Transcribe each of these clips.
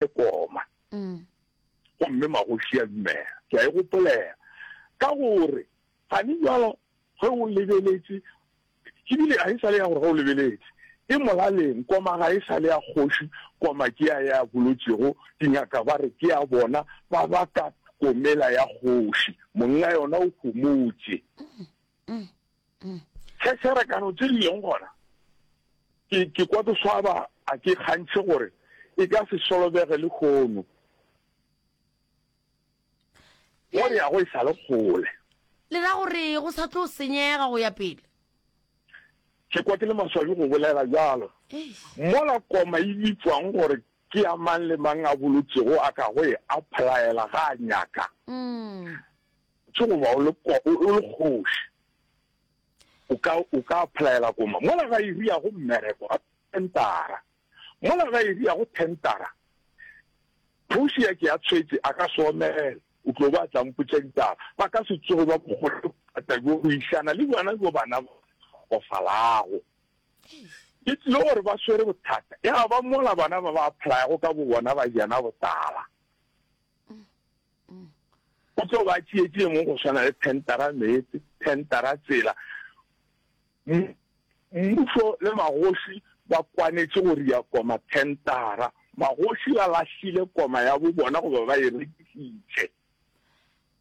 e koma. Mm. Gomme magoši a dumela. Ke a e gopolela. Ka gore, gane jalo, ge o lebeletše, ke bile ga e sa le ya gore ge o lebeletše, e molaleng koma ga e sa le ya kgoši koma ke ya ya bolotšego dingaka ba re ke ya bona ba baka komela ya kgoši monna yona o homotše se se re kano tse di leng gona ke ke kwa ke swaba a ke kgantšhe gore e ka se solobege le kgono go re ya go e sa le kgole le ra gore go sa tlo senyega go ya pele ke kwa ke le maswabi go bolela jalo mola koma e bitswang gore ke ya mang le mang a bolotšego a ka go e applyela ga a nyaka mm. Ke go ba o le kwa o le kgoši. O ka o ka applyela koma mola ga iri ya go mmereko ga tentara. Mola ga iri ya go tentara. Phuši ya ke ya tshwetse a ka soomela. O tlo ba tla mpotša ditaba. Ba ka se tsoge ba bogolo thata go išana le bona go bana go falago. Ke tlile gore ba swere bothata. Ya ba mola bana ba ba apply go ka bo bona ba jana botala. go tlo ba tsietsi e mong go swana le tentara meetse tentara tsela mmuso le magoši ba kwanetše go ria koma tentara magoši ba lahlile koma ya bo bona goba ba e rekisitše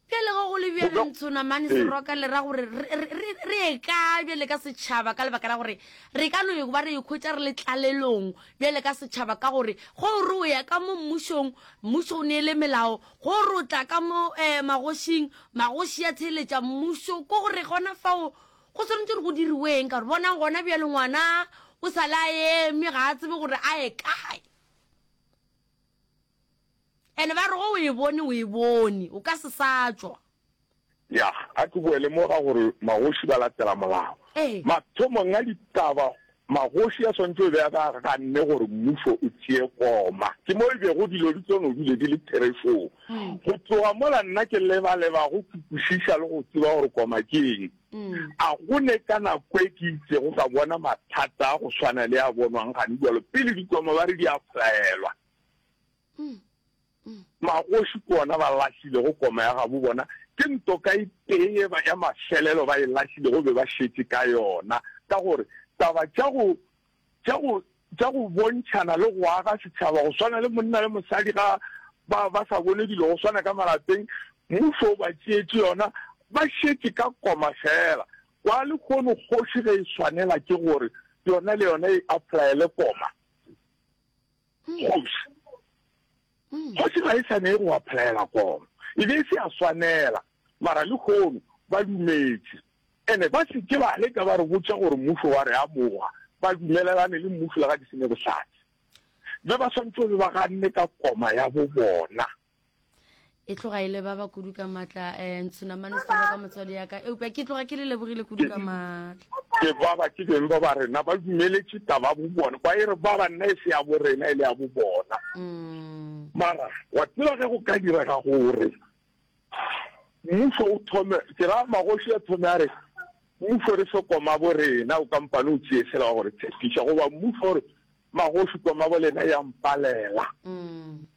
pele go go le bjale ntshona mane ee. seroka le ra gore re e ka bjale ka setšhaba ka lebaka la gore re ka no e ba re e khwetša re le tlalelong bjale ka setšhaba ka gore ge o re o ya ka mo mmušong, mmušo o neele melao, ge o re o tla ka mo um magošing, magoši a theeletša mmušo, ke gore gona fao go swanetše gore go diriweeng? Ka gore bonang gona bjale ngwana o sa le a eme ga a tsebe gore a ye kae. Ene ba re ge o e bone o e bone, o ka se sa tšwa. Yah, a ke boele mo ga gore magoši ba latela molao. Ee. Mathomong a ditaba, magoši a swanetše go be a ba ganne gore mmušo o tšee koma. Ke mo e bego dilo di tlo no bile di le therešong. Go tloga mola nna ke leba-leba go kwešiša le go tseba gore koma ke eng. A go ne ka nako e ke itšego ka bona mathata a go swana le a bonwang gane bjalo pele dikoma ba re di a flaelwa? Magoši ke ona ba lahlilego koma ya gabo bona, ke ntoka e tee ye ya mafelelo ba e lahlilego be ba šetše ka yona, ka gore taba tša go, tša go, tša go bontšhana le go aga setšhaba go swana le monna le mosadi ga ba, ba sa bone dilo go swana ka malapeng, mmušo o ba tšeetše yona, ba šetše ka koma feela. Kwa lehono kgoši ge e swanela ke gore yona le yona e apply-ele koma. Kgoši. Kgoši ga e sa ne go applyela kono. E be e se ya swanela, mara lehono ba dumetše. Ene ba se ke ba leka ba re botša gore mmušo wa re amoga, ba dumelelane le mmušo le ga ke se ne bohlatse. Be ba swanetše go be ba ganne ka koma ya bobona. e tloga e le ba ba kudu ka matla um eh, ntshunamane se ka motswadi yaka eupja ke tloga ke le lebogile kudu ka matla ke baba ke beng ba ba rena ba dumeletše taba bo bona ba e re ba banna e se ya bo rena e le ya bo bona mm. mara wa tseba ge go ka direga gore mmuso o thome ke ra magoši a thome a re mmuso re se koma bo rena o kampane o tseye sela wa gore tshepiša goba mmuso gore magoši koma bo lena ya mpalela mm.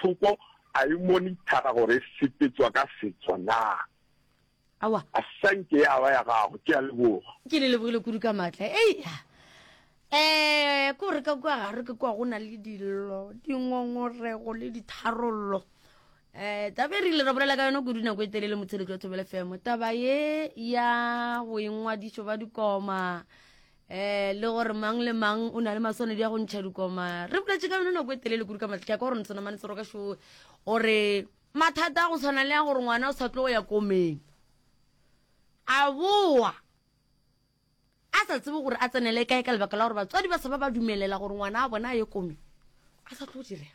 Thoko a e monithara gore e sepetswa ka setso naa. Aowa. A sa nke ya ba ya gago. Ke a leboga. Ke le lebogile kudu ka maatla. Ei, ya. Eh, ko re ka kwa gare ke kwa go na le dillo, dingongorego le ditharollo. Eh, taba e re ile ra bolela ka yona kudu nako e telele motsheletso wa thobele femo taba ye ya boingwadišo ba dikoma eh le gore mang le mang o na le maswanedi ya go ntšha dikoma re boletše ka yone nako e telele kudu ka matlhaka ka gore ntsonamane tsero ka shoe gore mathata a go tshwana le ya gore ngwana o sa tlo go ya komeng a boa a sa tsebe gore a tsenele kae ka lebaka la gore batswadi ba sa ba ba dumelela gore ngwana a bona a ye komeng a sa tlo direga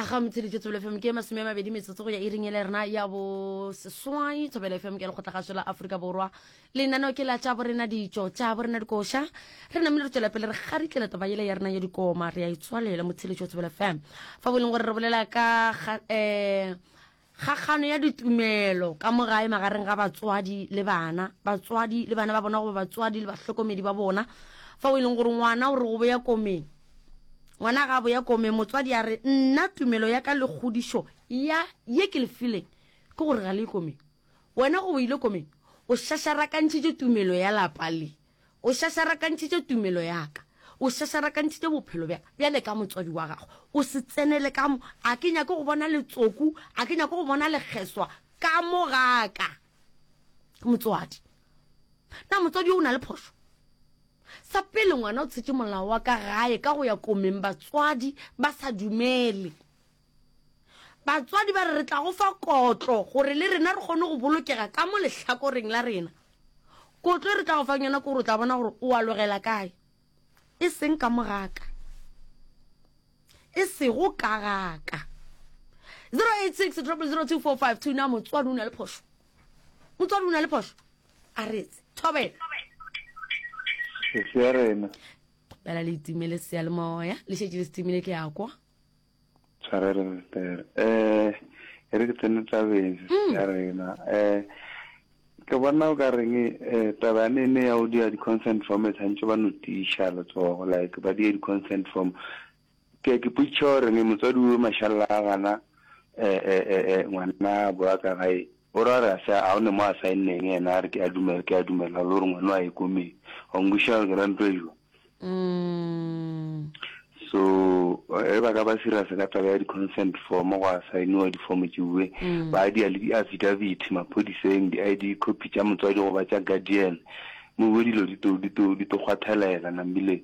a ga motsheditse thobela fm ke masome a mabedi metsotso go ya iring ele rena ya bo seswai thobela fm ke lekgotla gašo la aforika borwa lenaneo ke la tša borena ditšo tša borena dikoša re namile re tswela pele re garitlele toba yele ya rena ya dikoma re ya itswalela motsheditse wa thobela fm fa bo e leng gore re bolela ka um Kgakgano ya ditumelo ka mo gae magareng ga batswadi le bana, batswadi le bana ba bona goba batswadi le bahlokomedi ba bona, fao e leng gore ngwana o re go boya komeng. Ngwana ga a boya komeng, motswadi a re, Nna tumelo ya ka le kgodišo ya ye ke le fileng ke gore ga le ye komeng. Wena goba o ile komeng o šašarakantšhitše tumelo ya lapa le. O šašarakantšhitše tumelo ya ka, o šašarakantšhitše bophelo bja ka. Bjale ka motswadi wa gago o se tsenele ka mo. A ke nyake go bona letsoku, a ke nyake go bona lekgeswa ka mo ga ka. Motswadi, na motswadi yo o na le phošo? Sa pele, ngwana o tshetše molao wa ka gae ka go ya komeng batswadi ba sa dumele. Batswadi ba re, Re tla go fa kotlo gore le rena re kgone go bolokega ka mo lehlakoreng la rena. Kotlo e re tla go fang yona ke gore o tla bona gore o a logela kae, e seng ka mo ga ka, e sego ka ga ka. 086 002452 Na motswadi o na le phošo? Motswadi o na le phošo? A re etse. Thobela. Ke se ya rena. Bela le itimele seyalemoya. Le šetše le se timile ke ya kwa. Tshwarelo Pastor. Eh, e re ke tsene tabeng Mm. ya rena. Eh, ke bona o ka reng eh, taba ya nene ya o dia di-consent form e tshwanetse ba no tiša letsogo like ba die di-consent form. Ke ke potšiša o reng motswadi o mashalla a gana eh, eh, eh, eh, ngwana boa ka gae O ra re a se a one mo a saenneng ena a re ke a dumela ke a dumela lo re ngwano a ye ko me wa ngwisha gore ke ra ntlo ejwa so e ba ka ba sira se ka taba ya di consent form go a saeniwa di form tse bue ba di a le di affidavit maphodiseng di ID copy tsa motswadi go ba tsa guardian mo bue dilo di to di to di to kgwathelela nambile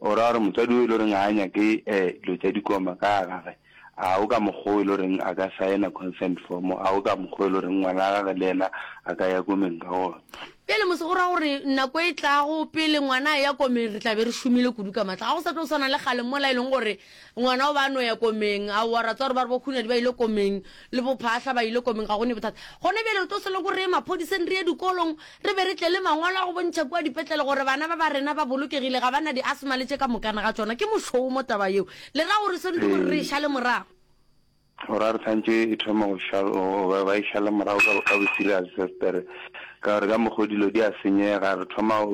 O ra gore motswadi o e le goreng ga a nyake dilo tša dikoma ka gagwe, a o ka mokgwa o e le goreng a ka saena consent form, a o ka mokgwa o e le goreng ngwana wa gagwe le yena a ka ya komeng ka gona. Bjale mose go ra gore nako e tlago pele ngwana a ya komeng re tla be re šomile kudu ka matla, ga go sa tlo swana le kgale mola e leng gore Ngwana o ba a no ya komeng. Aowa, ra tseba gore ba re bo-Kgunadi ba ile komeng, le bo-Phahla ba ile komeng, ga go ne bothata. Gona bjale re tlo se loko re ye maphodiseng, re ye dikolong, re be re tle le mangwalo a go bontšha kua dipetlele gore bana ba ba rena ba bolokegile, ga ba na di-asthma le tše ka mokana ga tšona. Ke mošomo taba yeo. Le ra gore seno ke gore re e šale morago? Gore a re tshwantšho e thoma go šala, ba e šala morago ka, ka bo serious sester. Ka gore ka mokgwa dilo di a senyega, re thoma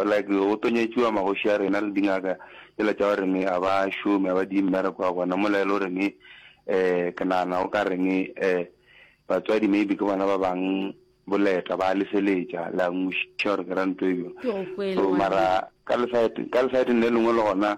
like go tonyetšiwa magoši a rena le dingaka tšela tša gore ne a ba šome, a ba di mmereko wa bona. Mola e le gore ne um ke nagana o ka re ne um batswadi maybe ke bona ba bang boleta ba lefeletša la ngwešiša gore ke ra ntho e bjang. So mara ka le side, ka le side le lengwe le gona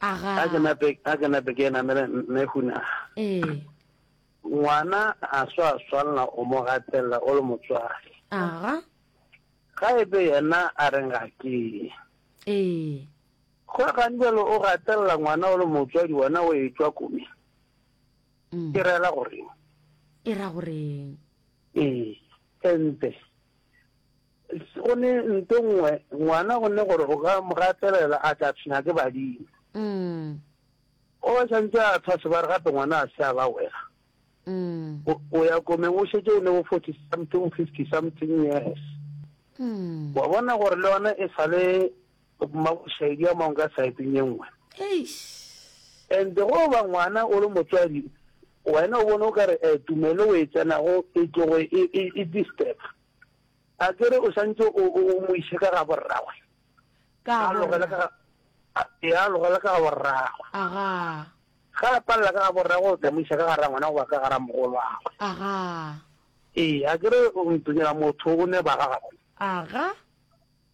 a ke nape a ke nape ke namele mme huna ee ngwana a swa swalla o mo gatella o le motswadi aga ga ebe yena a re ga ke ee go ga njalo o gatella ngwana o le motswadi wena o e tswa kome mm. ke rela gore e ra gore ee ente Go ne nto nngwe, ngwana go ne gore o ka mo gatelela a tla tshwenya ke badimo. Mm. O ba santse a tshwa sebare gape ngwana a se a ba wela. Mm. O ya komeng o shetse o ne o 40 something 50 something years. Mm. Wa bona gore le yone e sale maboshedi a mangwe ka saeteng e nngwe. Eish. And go ba ngwana o le motswadi wena o bone o ka re eh, tumelo o e tsenago e tlogo e, e, e disturb. A ke re o santse o o mo ise ka ga borragwe? Ka A logela borra. ka ga a- e a logela ka ga borragwe. Aga. Ga a palela ka ga borragwe o tla mo isa ka ga rangwana goba ka ga ramogolwagwe. Aga. Ee, a ke re o ntonyela motho o ne ba ga gago. Aga.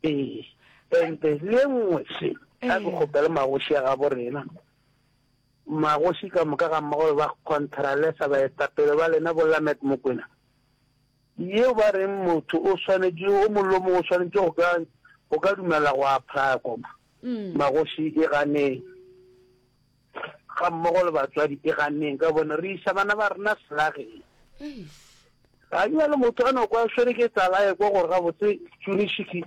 Ee. Ente le e nngwe se a ke Ee. kgopele magoši a gabo rena. Magoši ka moka ga mmago ba Contralesa baetapele ba lena bo Lamet Mokwena Yeo ba reng motho o swanetše, o molomo o swanetše go ka, go ka dumela go aphako, magoši e ganeng, ga mmogo le batswadi e ganeng, ka gobane re iša bana ba rena selageng. Ga e bjalo motho a no kwa swere ke tlala ekwa gore gabotse tšunešiki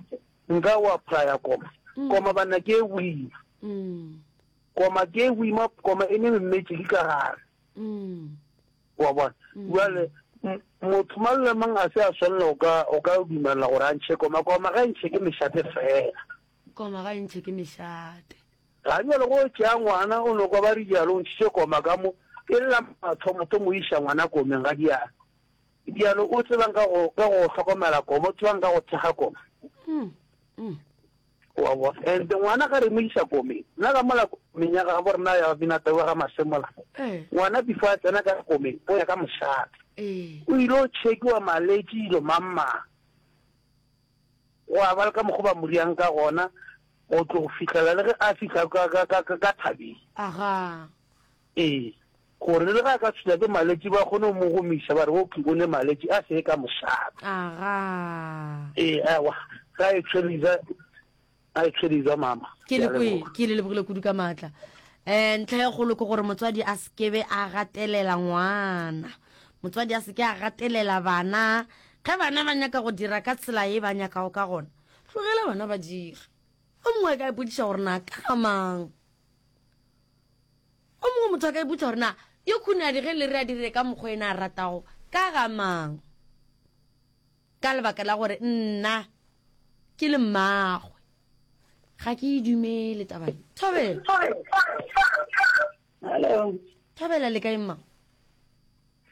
nka o aphaya koma, koma banna ke e boima, koma ke e boima, koma e ne memmetše di ka gare. Wa bona? Bjale, m-, motho mang le mang a se a swanela go ka, go ka dumelela gore a ntšhe koma. Koma ga e ntšhe ke mešate feela. Koma ga e ntšhe ke mešate. Ga bjale go tšea ngwana, o nokwa ba re bjalo, o ntšhitše koma ka mo, e lla mathomothomo o iša ngwana komeng ga diana. Bjale o tseba'ng ka go, ka go hlokomela koma? O tseba'ng ka go thekga koma? Mm, mm. Wa bona? And ngwana ga re mo iša komeng, nna ka mola komeng ya gabo rena ya Binata wa ga Masemola, ngwana before a tsena ka komeng o ya ka mošate, o ile o chekiwa maletši dilo mang-mang. Gwa ba le ka mokgwa ba mo riang ka gona go tlo go fihlela le ge a fihla ka thabeng. Ee, gore le ge a ka tshwenya ke maletši ba kgone go mo gomiša ba re oki o ne maletši a se ye ka mošate. Aga. Ee, ewa, ga e tshweriza, ga e tshweriza mama. Ke le kwe, ke le lebogile kudu ka matla. Eh, ntlha ya kgolo ke gore motswadi a sekebe a gatelela ngwana. Motswadi a seke a gatelela bana. Ge bana ba nyaka go dira ka tsela ye ba nyakago ka gona, tlogela bana ba dire. O mongwe a ka ipotšiša gore na ka ga mang? O mongwe motho a ka ipotsa gore na yo khunadi ge le re a dire ka mokgwa ena a ratago ka ga mang? Ka lebaka la gore nna ke le mmagwe ga ke e dumele taba e. Thobela. Hello. Thobela le kae mma?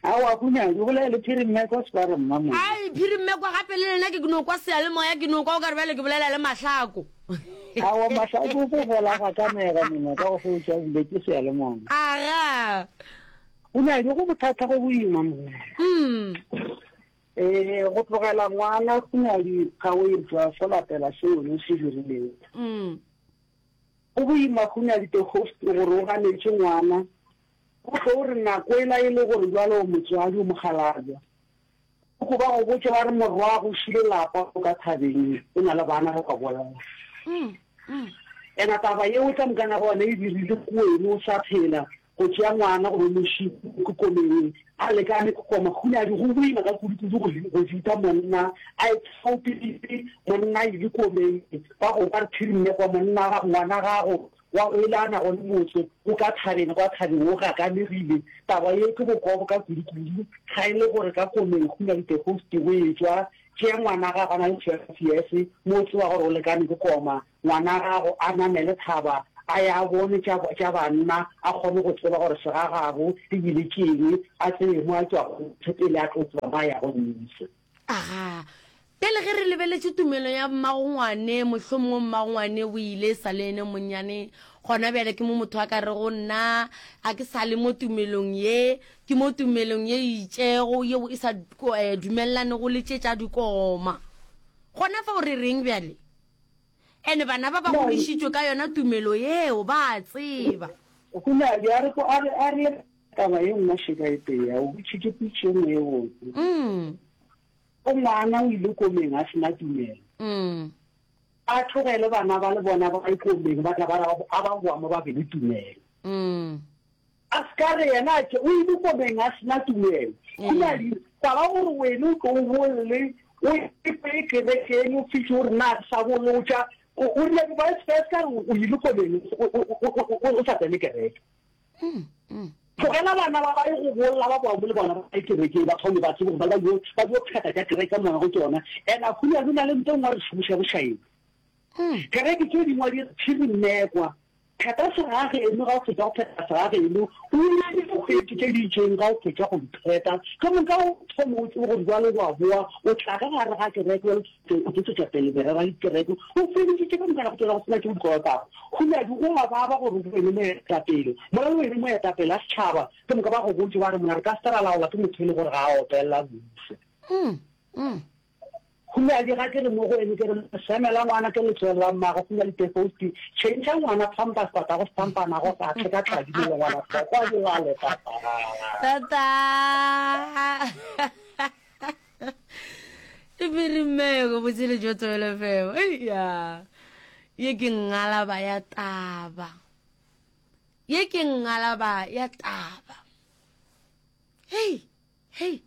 Aowa Kunyadi, go bolela le Phirimmekwa Sparrow Mmamodi. Ai, Phirimmekwa, gape le lena ke no kwa seyalemoya, ke no kwa o ka re bjale ke bolela le Mahlako. Aowa Mahlako, o ko gola ga ka nega mengwa ka go fo o tša bule ke seyalemoya. Aga. Kunyadi, go bothata go boima monna. Mm. Ee, go tlogela ngwana Kunyadi ga o irtwa fo lapela seo ne se dirileng. Mm. Go boima Kunyadi the host gore o ganetše ngwana O tlo re nako ela e le gore bjalo o motswadi, o mokgalabja, o tlo ba go botša ba re morwago o šile lapa o ka thabeng o na le bana ba ka bolela. Ena taba ye o tla mokana gona e dirile ko wene o sa phela go tšea ngwana go bomoši ke komeng a lekane ke koma kgunadi go boima ka kudu-kudu go go fita monna a e tsaupele monna e le komeng ba go ba re thirinne kwa monna ga ngwana gago Wa go ela a nago le motse wo ka thabeng kwa thabeng wo gakalegile. Taba ye ke bokobo ka kudukudu, ga e le gore ka komeng go na le tegosti go e tšwa. Tšea ngwana gago a na le twelve years, mo o tseba gore o lekane ke koma, ngwana gago a namele thaba a ya a bone tša, tša banna, a kgone go tseba gore segagabo e bile ke eng, a tsebe mo a tšwago pele a tlo tseba mo a yago. Nniso. Aga, bjale ge re lebeletše tumelo ya mmagongwane, mohlomongwe mmagongwane o ile e sa le ene monnyane, gona bjale ke mo motho a ka rego, Nna ga ke sa le mo tumelong ye, ke mo tumelong ye e itšego, yeo e sa eh, dumelelanego le tše tša dikoma. Gona fa o re reng bjale? Ene bana ba ba godišitšwe ka yona tumelo yeo ba a tseba. Go na bjare ko a re, a re, Taba ye nngwe še ka e teya, o butše ke pitši ye nngwe ye botse. Mm. O ngwana o ile komeng a sena tumelo. Mm. A tlogele bana ba le bona ba ikomeng ba tla ba ra a ba boa mo ba be le tumelo. Mm. A se ka re yena a ke o ile komeng a sena tumelo. Mm. Go na le taba gore wena o tlo o bolle o epe kerekeng o fihle o re na re sa bolotša o rile ba se ka re o ile komeng o sa tsene kereke. Tlogela bana ba ba ye go bolla ba bao mo le bona ba ye kerekeng, ba thome ba tsebe gore ba le ba ba dio pheta tša kereke moya go tšona. And a hunya go na le nto ngwa re šomiša bošaedi. Kereke tše dingwe di re phiri mme kwa, pheta segage eno ga o fetša go pheta segage eno, o ye dikgwedi tše di itšeng ga o fetša go di pheta, ka moka o thome o tsebe gore jwale wa boa o tla ka gare ga kereke. Tse go tšwetšetša pele merero ya dikereke o fedišitše ka dumela go tšwela go sena tšeo di kolotago. Huladi go a baba gore go be le moetapele. Mola o e le moetapele a setšhaba, ke moka ba go botše ba re, Mona re ka se ke ra laolwa ke motho e le gore ga a opelela Mmušo. Huladi ga ke re mo go wene, ke re, Leseme la ngwana ke letswele la mmagwe. Huladi Tefousti, tšhentšha ngwana pampers, tatago sepampanago, ga tle ka tladi mo le ngwana hloko a dilale, tataga. Tata! e mere mmego botshele jo tswele feo ya ye ke ngalaba ya taba ye ke ngalaba ya taba hei hei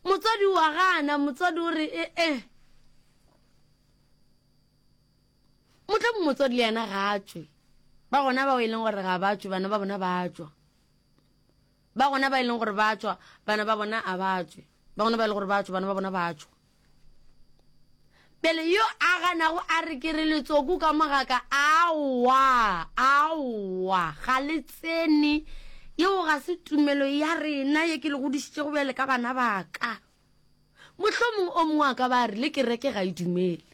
motswadi wa gana motswadi o re e e motla mo motswadi le yena ga tswe ba gona bao e leng gore ga ba tswe bana ba bona ba tswa Ba gona ba e leng gore ba a tšwa, bana ba bona a ba tšwe. Ba gona ba e lego gore ba a tšwa, bana ba bona ba a tšwa. Bjale yo a ganago a re ke re letsoku ka mogaka, aowa, aowa, ga le tsene. Yeo ga se tumelo ya rena ye ke le godišitšego bjale ka bana ba ka. Mohlomongwe o mongwe a ka ba a rile kereke ga e dumele.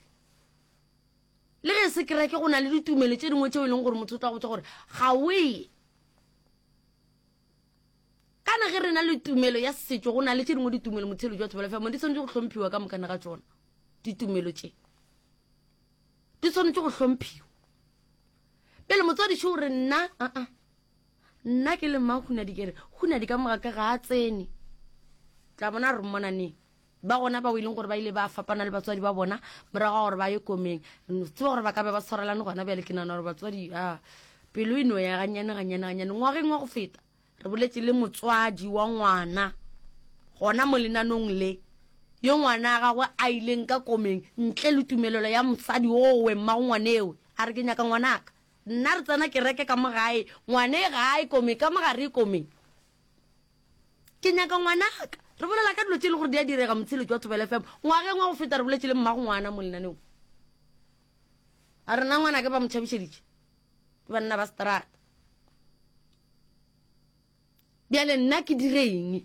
Le ge e se kereke go na le ditumelo tše dingwe tšeo e leng gore motho o tla go tšwa gore ga o ye. kana ge re na le tumelo ya setšo go na le tše dingwe ditumelo motshelo jwa thobela famo di swanetše go hlomphiwa ka mokana ga tsona ditumelo tše di swanetše go hlomphiwa pele motswadi šo re nna aa uh -uh. nna ke le mma go na dikere go na di ka mogaka ga a tsene tla bona re mmona neng Ba gona bao e leng gore ba ile ba fapana le batswadi ba bona morago ga gore ba ye komeng. Re tseba gore ba ka be ba tshwarelane gona bjale. Ke nagana gore batswadi a pelo e no ya gannyane gannyane gannyane. Ngwageng wa go feta re boletse le motswadi wa ngwana gona mo lenanong le yo ngwana a gagwe a ileng ka komeng ntle le tumelelo ya mosadi owe mmago ngwanewe a re ke nyaka ngwanaka nna re tsena kereke ka mo gae ngwane gae komeng ka mo gare e komeng ke nyaka ngwanaka re bolela ka dilo tse e le gore di a direga motshelo jwa thobela fm ngwageng wa go feta re boletse le mmago ngwana mo lenaneong a rena ngwana ke ba mo tšhabišeditše ke banna ba strata bjale nna ke direng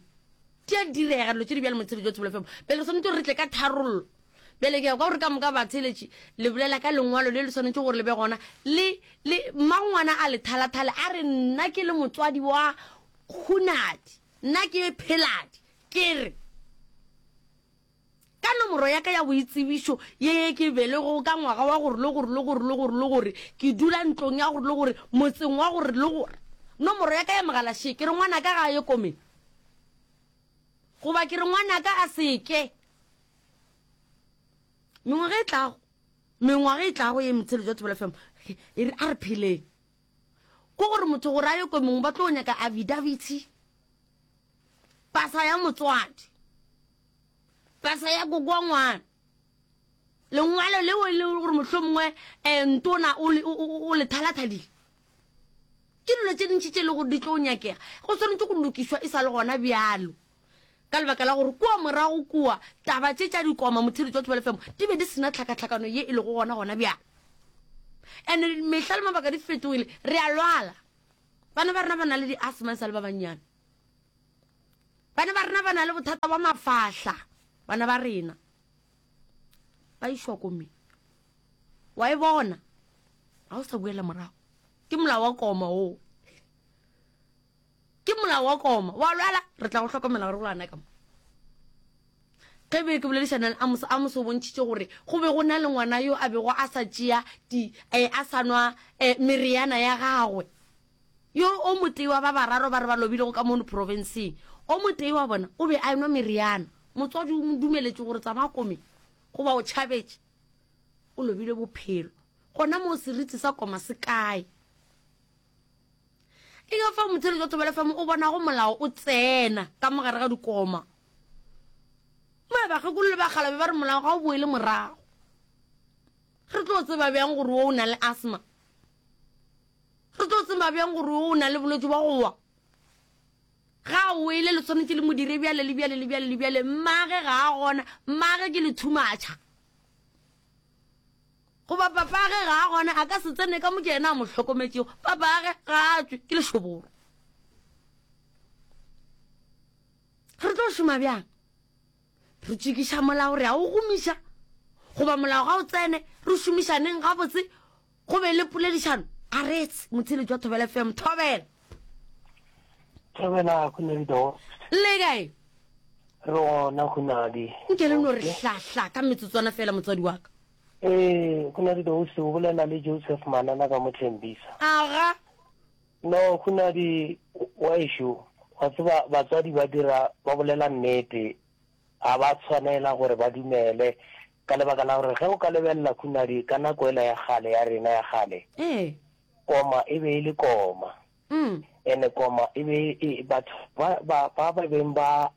di a direga dilo tse di bjale motshelo jwa thobela fm pele re tshwanetse gore re tle ka tharollo Bjale ke ya kwa gore ka moka batheeletši le bolela ka lengwalo le le swanetše gore le be gona. Le, le, mmangwana a le thalathale, a re, Nna ke le motswadi wa Hunadi. Nna ke Pheladi. Ke re, Ka nomoro ya ka ya boitsebišo ye ye ke belegwego ka ngwaga wa gore le gore le gore le gore le gore, ke dula ntlong ya gore le gore, motseng wa gore le gore. Nomoro ya ka ya mogala še, ke re ngwanaka ga a ye komeng. Goba ke re ngwanaka a se ke. mengwaga e tlago mengwaga e tlago ye metsheletso ya thobela fm e re a re pheleng ko gore motho gore a ye ko mongwe ba tlo nyaka avidaviti pasa ya motswadi pasa ya kokoa ngwana lengwalo leo e leng gore motlho mongwe um eh, ntona o le thalathadile ke dilo tse dintšhi tse e le gore di tlo nyakega go tshwanetse go lokiswa e sa le gona bjalo ka lebaka la gore kua morago kua taba tše tša dikoma mothiri tšwa tšbalefemo di be di sena tlhakatlhakano ye e lego gona gona bjang ande mehla le mabaka di fetogile re a lwala bana ba rena ba na le di-asma e sa le ba bannyane bana ba rena ba na le bothata ba mafahla bana ba rena ba išwa kome wa e bona ga o sa buela morago ke molao wa koma oo ke molao wa koma wa lwala re tla go hlokomela gore go lwana ka mo ge be ke boledišanang a moso a moso o bontšhitše gore go be go na le ngwana yo a bego a sa tšea di um a sa nwa um meriana ya gagwe yo o motee wa ba bararo ba re ba lobilego ka mono profenseng o motee wa bona o be a enwa meriana motswadi o mo dumeletše gore tsamaya kome goba o tšhabetše o lobile bophelo gona moo seriti sa koma se kae e ka fa mothelo jwa thobela fa mo o bonago molao o tsena ka mogare ga dikoma mae bakgekolo le bakgalabe ba re molao ga o boele morago re tlo tseba bjang gore o o na le asthma re tlo tseba bjang gore o o na le bolwetse ba gowa ga o ele le tshwanetse le modire bjale le bjale le bjale le bjale mmage ga a gona mmage ke lethumatšha Goba papage ga a gona, a ka se tsene ka mo ke yena a mo hlokometšego. Papage ga a tswe, ke lešoboro. Re tlo šoma bjang? Re tšekiša molao, re a o gomiša. Goba molao ga o tsene, re šomišaneng gabotse, go be le poledišano. A retse, motshele jwa Thobela FM, Thobela. Thobela, go ne dido. Le kae? Rona go nadi. Nke le no re hlahla ka metsotswana fela motswadi wa ka. Ee, go na di dose, o bolela le Joseph Manana ka mo Thembisa. Aga. No, go na di, wa ešo, wa tseba batswadi ba dira, ba bolela nnete, ga ba tshwanela gore ba dumele, ka lebaka la gore ge o ka lebelela go na di, ka nako ela ya kgale, ya rena ya kgale, Ee. koma e be e le koma, Mm. ene koma e be e, batho ba, ba, ba, ba beng ba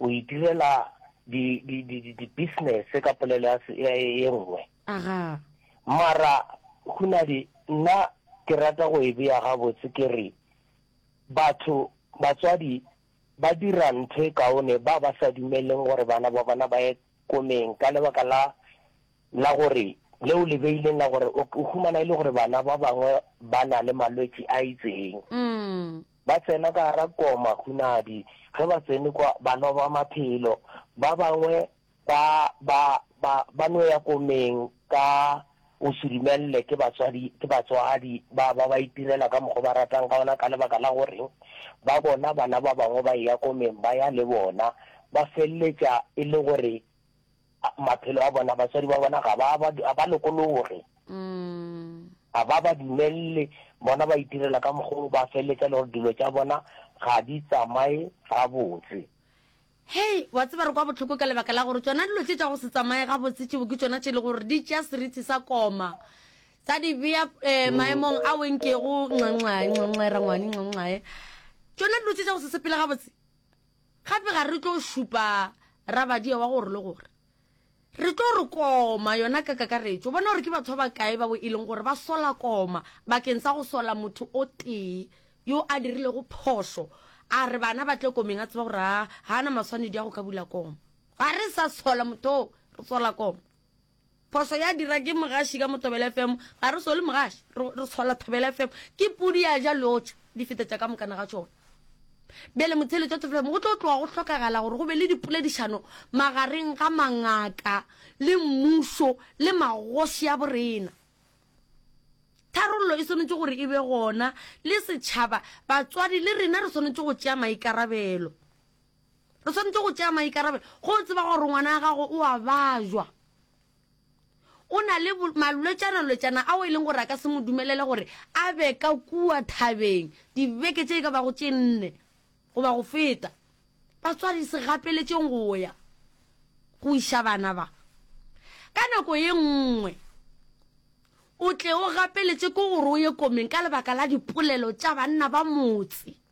o itirela di di di di business ka polelo ya se- ya e nngwe aga mara hunadi nna ke rata go e beya gabotse ke re batho batswadi ba dira ntho e kaone ba ba sa dumeleng gore bana ba bona ba ye komeng ka lebaka la la gore leo le beileng la gore o o humana e le gore bana ba bangwe ba na le malwetši a itseng mm. Ba tsena ka gare koma hunadi. Ge ba tsene kwa, ba loba maphelo. Ba bangwe ba, ba, ba, ba no ya komeng ka go se dumelelwe ke batswadi, ke batswadi ba, ba ba itirela ka mokgo ba ratang ka wona ka lebaka la gore ba bona bana ba bangwe ba eya komeng ba ya le bona, ba feleletša e le gore maphelo a bona basadi ba bona ga ba ba ba lokologe mm. ga ba ba dumelele bona ba itirela ka mokgwa ba feleletsa le gore dilo tša bona ga di tsamaye gabotse hei wa tseba re kwa botlhoko ka lebaka la gore tsona dilo tse tša go se tsamaye gabotse tšebo ke tsona tše e le gore di tša seriti sa koma tsa di beya eh, mm. maemong a wenkego nxanxae nxanxae rangwane nxanxae tsona dilo tse tša go se sepele gabotse Gape ga re tlo šupa rabadia wa gore le gore re tlo re koma yona ka kakaretšo. Bona gore ke batho ba bakae bao e leng gore ba sola koma bakeng sa go sola motho o tee yo a dirilego phošo, a re bana ba tle komeng a tseba gore ga a na maswanedi a go ka bula koma. Ga re sa sola motho oo, re sola koma. Phoso ya dira ke mogaši ka mo Thobela FM, ga re sole mogaši, re re sola Thobela FM. Ke pudi ya ja lotšha, di fetetša ka mokana ga tšona. Bjale motheeletši wa Thobela FM, go tlo tloga go hlokagala gore go be le dipoledišano magareng ga mangaka le mmušo le magoši a borena. Tharollo e swanetše gore e be gona, le setšhaba, batswadi le rena re swanetše go tšea maikarabelo. Re swanetše go tšea maikarabelo go tseba gore ngwana wa gago o a bajwa, o na le malwetšana-lwetšana ao e leng gore a ka se mo dumelele gore a be ka kua thabeng dibeke tše e ka bago tše nne goba go feta. Batswadi, se gapeletšeng go ya go iša bana ba. Ka nako ye nngwe o tle o gapeletše ke gore o ye komeng ka lebaka la dipolelo tša banna ba motse.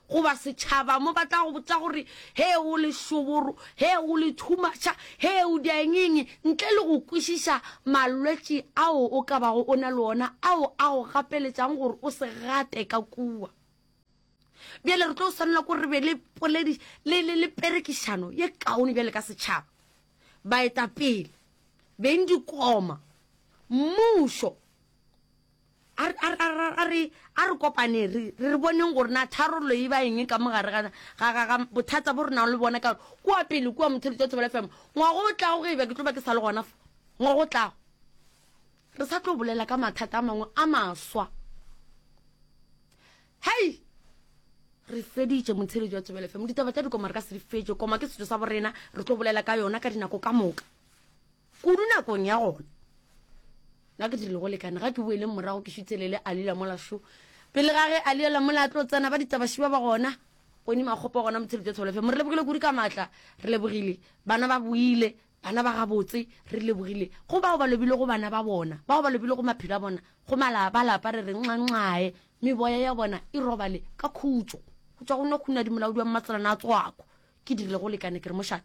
goba setšhaba mo ba tla go botsa gore he o lešoboro he o le thumaša he o diangeng ntle le go kwešiša malwetši ao o ka bago o na le ona ao a go gapeletšang gore o se gate ka kua bjale re tlo swanela ko re be le poledi le le le perekišano ye kaone bjale ka setšhaba baetapele beng dikoma mmušo A re, a re, a re, a re, a re kopaneng re, re, re boneng gore na tharollo e ba eng ka mo gare ga, ga, ga, ga bothata bo re nago le bona, ka gore kua pele kua Mothelotša o tsebela FM, ngwaga o tlago ge e ba ke tlo ba ke sa le gona fa, ngwaga o tlago, re sa tlo bolela ka mathata a mangwe a maswa. Hei! Re feditše Mothelotša o tsebela FM, ditaba tša dikoma re ka se di fetše, koma ke setšo sa borena, re tlo bolela ka yona ka dinako ka moka. Kudu nakong ya gona. Nna ke dirile go lekane, ga ke boeleng morago ke šutse lele a lila mola šo. Pele ga ge a liela mola a tlo tsena ba ditabaši ba ba gona, Koni Makgopa gona Motshelo Tša Tholofe. Mo re lebogile kudu ka maatla, re lebogile. Bana ba boile, bana ba gabotse, re lebogile. Go bao ba lobile go bana ba bona, bao ba lobile go maphelo a bona, go mala, ba lapa re re nxa-nxae, meboya ya bona e robale ka khutšo. Go tšwa go nna khunadi molaodi wa mmatselana a tswako. Ke dirile go lekane ke re mošate.